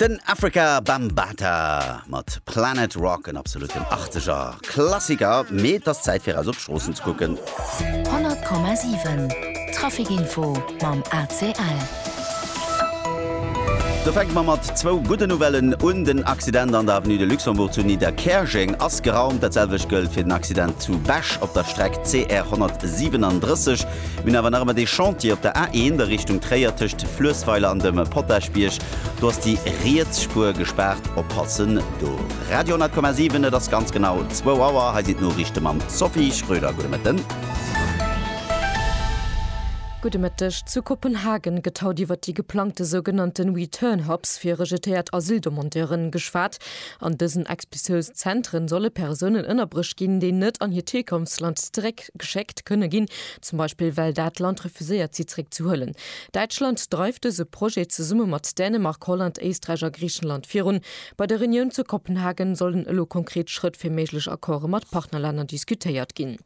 Den Afrika Bambata mat Planet Rock en absoluten Achteger Klassiker, mee et ass Zäit fir eis op d'Stroossen ze kucken. 100,7 Trafikinfo mam ACL. Do fänke mer mat zwou gudden Nouvellen un. Den Accident an der Avenue de Luxembourg zu Nidderkäerjeng ass geraumt. Dat selwecht gëllt fir den Accident zu Bech op der Streck CR 137. Mir hunn awer nach ëmmer dee Chantier op der A1 a Richtung Tréier tëscht Fluessweiler an dem Potaschbierg. Do ass déi riets Spuer gespaart, oppassen do. Radio 10,7, et ass ganz genau zwou Auer. Hei sinn d'Noriichte mam Sophie Schröder. Gudde Mëtten. Gudde Mëtteg. Zu Kopenhagen gëtt haut iwwer déi geplangte sougenannten Return Hubs fir rejetéiert Asyldemandeuren geschwat. An dësen Expulsiounszentren solle Persounen ënnerbruecht ginn, déi net an hiert Hierkonftsland zeréck Däitschland geschéckt kënne ginn, zum Beispill well dat Land refuséiert si zeréck ze huelen. Däitschland dreift dëse Projet zesumme mat Dänemark, Holland, Éisträich a Griichenland virun. Bei der Reunioun zu Kopenhagen sollen elo konkret Schrëtt fir méiglech Accorde mat Partnerlänner diskutéiert ginn.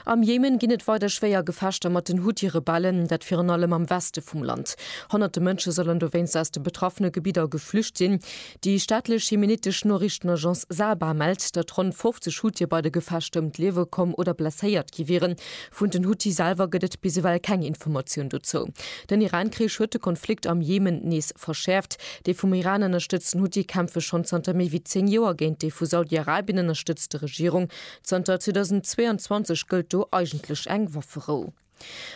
Am Jemen ginn et weider schwéier Gefechter mat den Huthi-Rebellen, dat virun allem am Weste vum Land. Honnerte Mënsche sollen dowéinst aus de betraffene Gebidder geflücht sinn. Déi staatlech jemenitesch Noriichtenagence Saba mellt, datt ronn 50 Huthië bei de Gefechter ëm d'Liewe komm oder blesséiert gi wieren. Vun den Huthi selwer gëtt et bis ewell keng Informatioun dozou. Den Iran-Krich huet de Konflikt am Jemen nees verschäerft. Déi vum Iran ënnerstëtzten Huthi kämpfe schonn zanter méi wéi 10 Joer géint déi vu Saudi-Arabien ënnerstëtzte Regierung. Zanter 2022 gëllt do eigentlech eng Wafferou.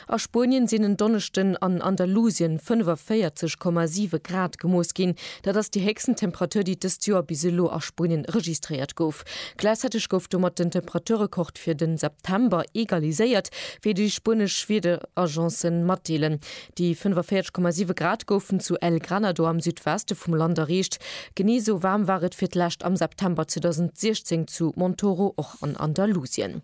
A Spuenien sinn en Donneschden an Andalusien 45,7 Grad gemooss ginn. Dat ass déi héchsten Temperatur, déi dëst Joer bis elo a Spuenien registréiert gouf. Gläichzäiteg gouf domat den Temperaturrekord fir de September egaliséiert, wéi déi spuenesch Wiederagence matdeelen. Déi 45,7 Grad goufen zu El Granado am Südweste vum Land erreecht. Genee esou waarm war et fir d'lescht am September 2016 zu Montoro, och an Andalusien.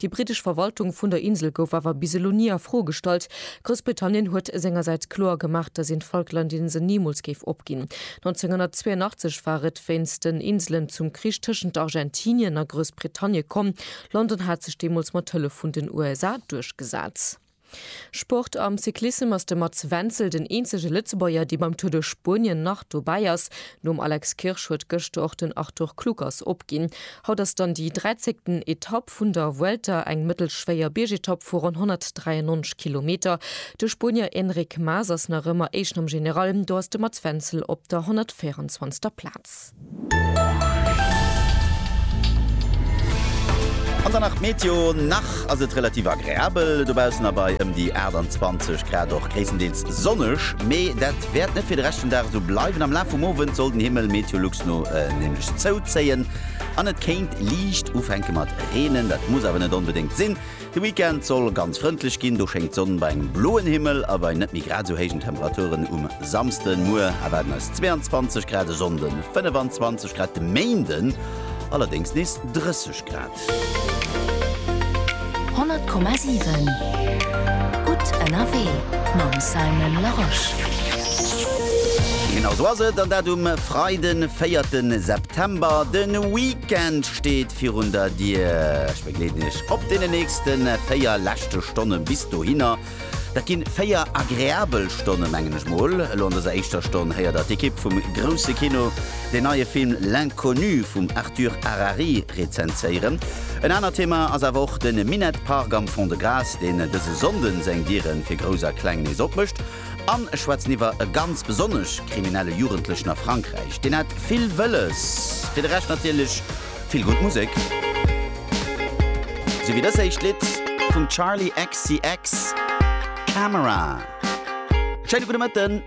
Déi britesch Verwaltung vun der Insel gouf awer bis elo ni a Fro gestallt. Groussbritannien huet sengersäits kloer gemaach, datt een d'Falklandinsel nimools géif opginn. 1982 war et wéinst den Inselen zum Krich tëschent Argentinien a Groussbritannie komm. London hat sech deemools mat Hëllef vun den USA duerchgesat. Sport, Am Cyclissem ass de Mats Wenzel den eenzege Lëtzebuerger, dee beim Tour de Spuenien nach dobäi ass. Nom Alex Kirsch huet gëschter och den Arthur Kluckers opginn. Haut ass dann déi dräizéngten Etapp vun der Vuelta, eng mëttelschwéier Biergetapp vu ronn 193 Kilometer. De Spuenier Enric Mas ass nach ëmmer Éischten am General, do ass de Mats Wenzel op der 124. Plaz. An dann nach d'Meteo, Nach ass et relativ agreabel dobaussen a bei ëm déi 28 Grad och gréisstendeels sonneg. Mee dat wäert net fir de Rescht vum Dag esou bleiwen. Am Laf vum Owend soll den Himmel Meteolux no nämlech zouzéien an et kéint liicht ufänke mat reenen. Dat muss awer net onbedéngt sinn. De Weekend soll ganz frëndlech ginn, do schéngt d'Sonn bei engem bloen Himmel a bei net méi grad esou héijen Temperaturen. Um Samsden, muer, erwaarden eis 22 Grad, e Sonnde 25 Grad, de Méinde allerdéngs nees 30 Grad. 100,7 gutt ënnerwee mam Simon Larosche. Genau esou ass et, an dat um Freiden, 4 September. De Weekend steet virun der Dier. Begleeden Iech op deenen nächste 4 leschte Stonne bis dohinner. Dat ginn 4 agreabel Stonne mengen ech mol. Elo an dëser éischter Stonn héiert der d'Ekipp vum Grousse Kino den neie Film L'Inconnu vum Arthur Harari rezenséieren. En anert Thema ass awer och de Minett Park am Fond-de-Gras, deen dëse Sonnden seng Dieren fir Grouss a Kleng nees opmécht. An ech schwätzen iwwer e ganz besonnesch kriminelle Jugendlechen a Frankräich, deen hat vill wëlles. Fir de Rescht natierlech Vill gutt Musek. Sou wéi dës éischt Lidd vum Charli XCX, Camera. Schéine gudde Mëtten.